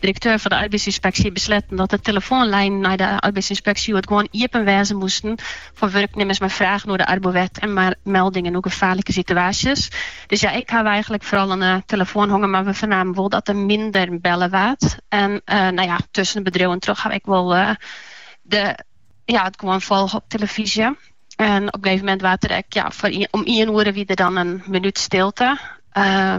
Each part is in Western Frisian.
Direkteur fan de Arbeidsynspeksje besletten dat de telefoanlijnen nei de Arbeidsynspeksje hjoed gewoan iepen wêze moasten foar wurknimmers mei fragen oer de Arbowet en mei meldingen oer gefaarlike situaasjes. Dus ja, ik haw eigenlik foaral oan 'e telefoan hongen, mar we fernamen wol dat der minder belle waard. En nou ja, tussen de bedriuwen troch haw ik wol de, ja, it gewoan folge op telefyzje. En op in gegeven momint wie der ek, ja, foar, om ien oere wie der dan in minút stilte. Uh,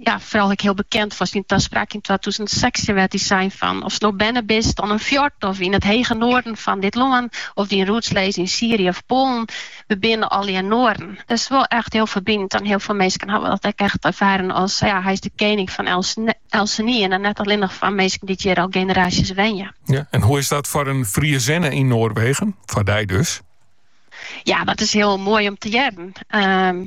ja, foaral ek heel bekend foar syn taspraak yn 2016 wêr't hy sei fan ofst no berne bist oan in fjord of yn it hege noarden fan dit lân of dyn roots lizze yn Syrië of Poalen, we binne allegear Noaren. Dat is wol echt heel ferbinend en heel veel minsken hawwe dat ek echt erfaren as ja, hy is de kening fan elkenien en dan net allinnich fan minsken dy't hjir al generaasjes wenje. Ja, en hoe is dat foar in Friezinne yn Noarwegen? Foar dy dus? Ja, dat is heel moai om te hearren. Ehm,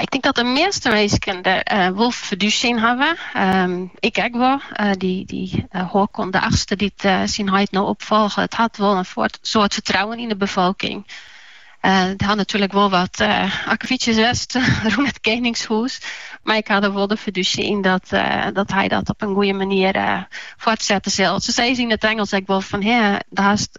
Ik tink dat de measte minsken der eh, wol fidúsje yn hawwe. Ehm, ik ek wol. Eh, dy dy eh, Håkon de Achtste dy't eh, syn heit no opfolget, it hat wol in foort- soad fertrouwen yn de befolking. Eh, der ha natuerlik wol wat eh akkefietsjes west rûn it keningshûs, mar ik ha der wol de fidúsje yn dat, eh, dat hy dat op in goede manier eh, foartsette sil. Se sizze yn it Ingelsk ek wol fan, hea, der hast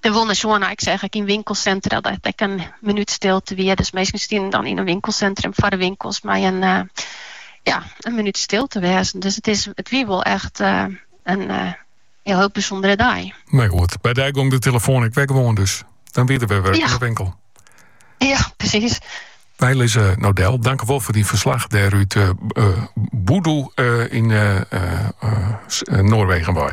Der wol nei sjoen en ik seach ek yn winkelsintra dat ek in minút stilte wie. Dus minsken stienen dan yn in winkelsintrum foar de winkels mei in eh, ja, in minút stil te wêzen. Dus it is it wie wol echt eh, in eh, heel heel bysûndere dei. Mar goed, by dy gong de telefoan ek wer gewoan dus. Dan wie der wurk, ja, oan de winkel. Ja, presys. Lize Nodel, tankewol foar dyn ferslach dêr út uh, Bodø uh, yn uh, Noarwegen. Wy.